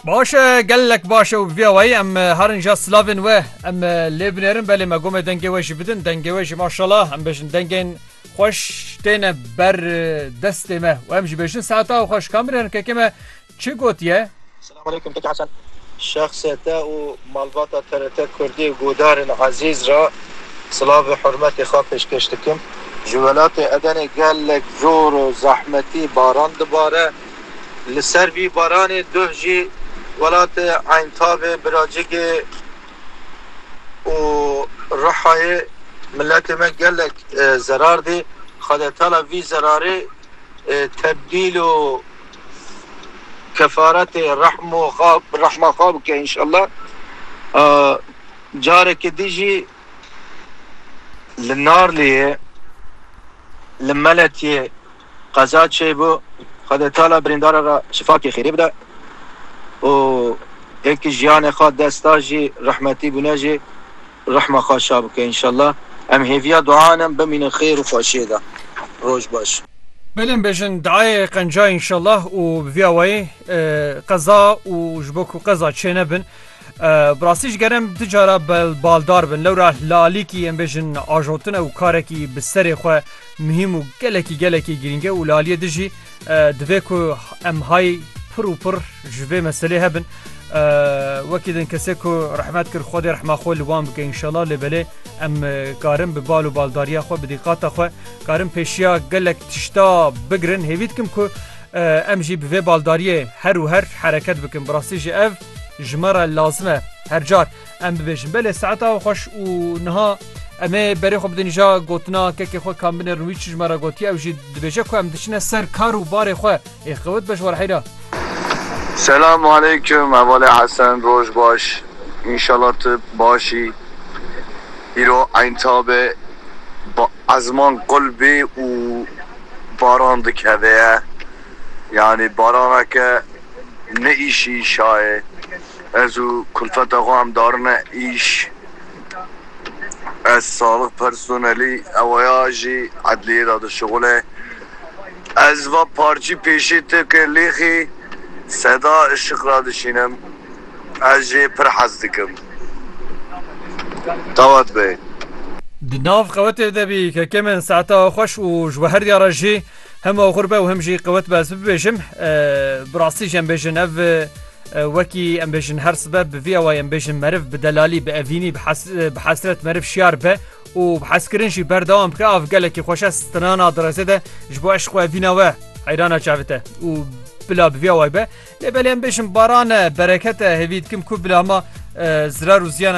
Baş e gelek baş e û vê wayî em herin ja silavên we em lê binêrin belê me gomê dengê we jî bidin dengê we jî maşala em bêjin dengên xweş têne ber destê me û em jî bêjin saeta û xweş kamirêrin kekê me çi gotiye Selamünaleyküm Keke Hesen şexsê te û malbata TRT Kurdî û guhdarên ezîz re silav û hurmetê xwe pêşkêş dikim. Ji welatê Edenê gelek zor û zehmetî baran dibare. Li ser vî baranê duh jî welatê Eyntabê, Biracikê û Rihayê miletê me gelek zerar dî. Xwedetala vî zerarê tebdîl û kefaretê rehma xwe bike înşellah. Carekê din jî. Li Narliyê li Meletyê qeza çêbû, Xwedê tala birîndara re şifakê xêrê bide û yekî jiyanê xwe desta jî rehmetî bûne jî rehma xwe şa bike înşallah. Em hêviya duayan in bimînin xêr û xweşiyê de. Roj baş. Bilin bejin diayê qenca înşallah û bi vî awayî qeza û ji bo ku qeza çênebin Bi rastî ji gerem du cara baldar bin lewra lalîkî em bêjin ajotine û karekî bi serê xwe muhîm û gelekî gelekî girînge û laliyê di jî divê ku em hay pir û pir ji vê meselê hebin wekî din kesê ku rehmet kir xwedê rehma xwe li wan bike înşela lê belê em karin bi bal û baldariya xwe bi dîqata xwe karin pêşiya gelek tişta bigirin hêvî dikim ku em jî bi vê baldariyê her û her hereket bikin bi rastî jî ev Ji me re lazim e her car em bibêjin belê saeta we xweş û niha em ê berê xwe bidin ja gotina kekê xwe kam binê rûî çi ji me re gotiye ew jî dibêje ku em diçine ser kar û barê xwe ê xewit be ji war heyra. Selam aleyküm Hevalê Hesen roj baş inşallah tu başî îro eynta be bi ezman qul bê û baran dikeveye. Yanî baraneke ne îşî şayê ez û kulfeta xwe em darine îş. Ez saxlix personelî ewaya jî edliyê de dişuxul e. Ez va parçî pêşê te ke lêxî seda işiq ra dişînim ez jê pir hez dikim. Dawet bê. Di nav xewetê de bî ke kêm in saeta xweş û ji we her diyar e jî. Hem axur be û hem jî qewet be ez bibêjim bi rastî jî em bêjin ev wekî em bêjin her sibe bi vî awayê em bêjin meriv bi delalî bi evînî bi hesret meriv şiyar be û bi heskirin jî berdewam bike av gelekî xweş e stinana direzê de ji bo eşq evîna we heyrana çavite û bila bi vî away be lê belê em bêjin barane berekete hêvî dikim ku bila hema zirar û ziyan